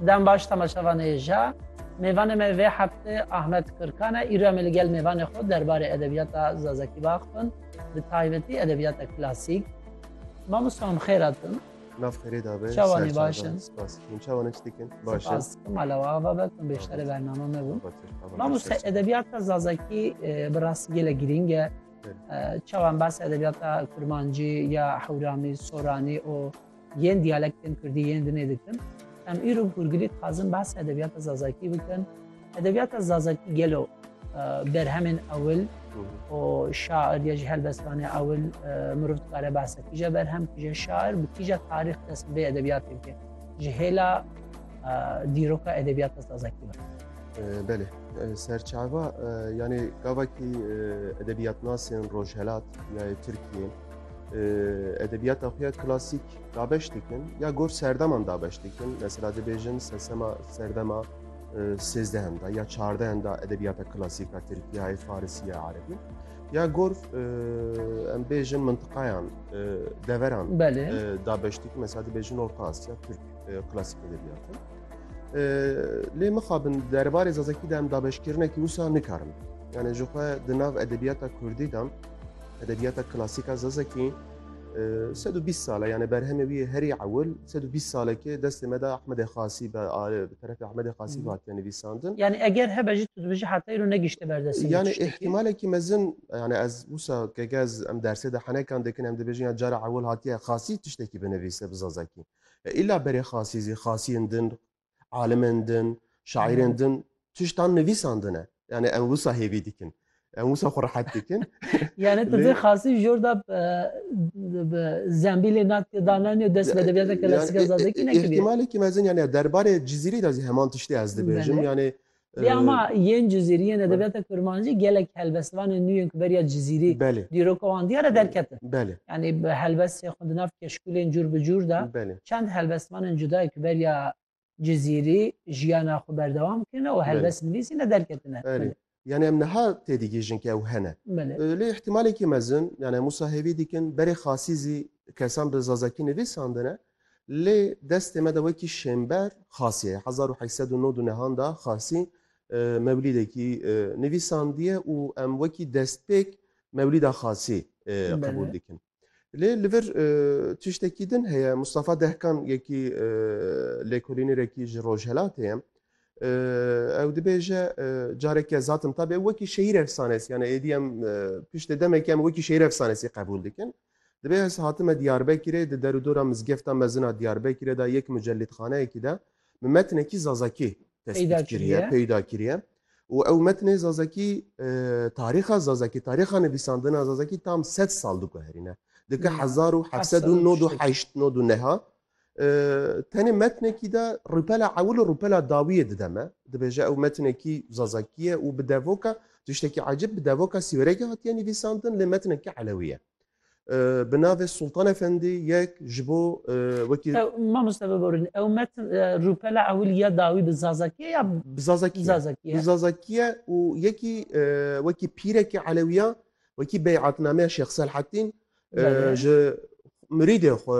Dem baş temaşevanê ja. Mêvanê me vê heftê Ahmet Kirkan e. Îro em li gel mêvanê xwe derbarê edebiyata Zazakî baxin. Bi taybetî edebiyata klasîk. Mamosta em xêr hatin. Nav xêrê dabe. Çawanî baş in. Spas. Hûn çawanê çi dikin? Baş in. Malewa ava be hûn bêşterê bername me bû. Mamosta edebiyata Zazakî bi rastî gelek girîng e. Çawan bas edebiyata Kurmancî ya Hewramî, Soranî û yên diyalektên Kurdî yên dinê dikin. Em îro gurgirî dixwazin behsa edebiyata Zazakî bikin. Edebiyata Zazakî gelo berhemên ewil û şair ya ji helbestanê ewil mirov dikare behsa kîje berhem kîje şair bi kîje tarîx dest bê edebiyatê bike ji hêla dîroka edebiyata Zazakî be. Belê serçava yanê gavakî edebiyatnasên rojhelat ya Tirkiye edebiyata xwe ya klasîk dabeş dikin ya gor serdeman dabeş dikin. Mesela dibêjin sesema serdema sêzdehim da ya çardehim da edebiyata klasîka Tirkiyeyê, Farisiye, Erebî. Ya gor em bêjin mintiqayan deveran dabeş dikin. Mesela dibêjin Orta Asya, Türk klasîk edebiyatı. Lê mixabin derbarê Zazakî de em dabeşkirinekî wisa nikarin. Yani ji xwe di nav edebiyata Kurdî de Edebiyata klasîka Zazakî sed û bîst sal e yanê berhemê wî herî ewil sed û bîst salekê destê me de Ahmedê Xasî be bi terefê Ahmedê Xasî ve hatiye nivîsandin. Yanî eger hebe jî tu dibijî heta îro negihişte ber destê me Yanê tiştekî. îhtîmalekî mezin yanê ez wisa keke ez em dersê de henekan dikin em dibêjin ya cara ewil hatiye Xasî tiştekî binivîse bi Zazakî. Îla berê Xasî zî Xasiyên din alimên din, şairên din tiştan nivîsandine. Yani em wisa hêvî dikin. Em wisa xwe rehet dikin. yani tu dê xasî jor da zembîlê natê dananê dest edebiyata klasîka zazekî nekiriye. İhtimalekî mezin yani derbarê Cizîrî de zî heman tiştê ez dibêjim. Yani Lê ama yên Cizîrî yên edebiyata kurmancî gelek helbestvanên nû yên ku beriya Cizîrî dîroka wan diyar e derketin. Yanî bi helbestê xwe di nav keşkûlên cûr bi cûr de çend helbestvanên cudayê ku beriya Cizîrî jiyana xwe berdewam kirine û helbest nivîsîne derketine. Yanî em niha têdigihîjin ke ew hene. Lê îhtîmalekî mezin yanî em wisa hêvî dikin berê xasî zî kesan bi zazakî nivîsandine Lê destê me de wekî Şênber Xasî ye. Hezar û heşt sed û nod û nehan de Xasî mewlîdekî nivîsandiye û em wekî destpêk Mewlîda Xasî qebûl dikin. Lê li vir tiştekî din heye. Mustafa Dehkan yekî lêkolînêrekî ji Rojhelatê ye. Ew dibêje careke zatim tabe wekî şehîr efsanes yani êdî em piştê demekê em wekî şehîr efsanesî qebûl dikin. Divê ez hatime Diyarbekirê, di derûdora Mizgefta Mezin a Diyarbekirê de yek mucelîdxaneyekî de min metnekî zazakî tespît kiriye, peyda kiriye û ew metnê zazakî tarîxa zazakî, tarîxa nivîsandina zazakî tam sed sal diguherîne. Di ka hezar û heft sed û nod û heşt nod û neha Tenê metnekî de rûpela ewil û rûpela dawiyê dide me. Dibêje ew metnekî zazakî ye û bi devoka tiştekî ecêb bi devoka sîwerekî hatiye nivîsandin lê metnekî elewî ye. Bi navê Sultan Efendî yek ji bo wekî Mamoste biborîn ew metn rûpela ewil ya dawî bi zazakî ye ya bi zazakî ye. Bi zazakî ye û yekî wekî pîrekî elewî ya wekî beyatnameya Şêx Selhettîn ji mirîdên xwe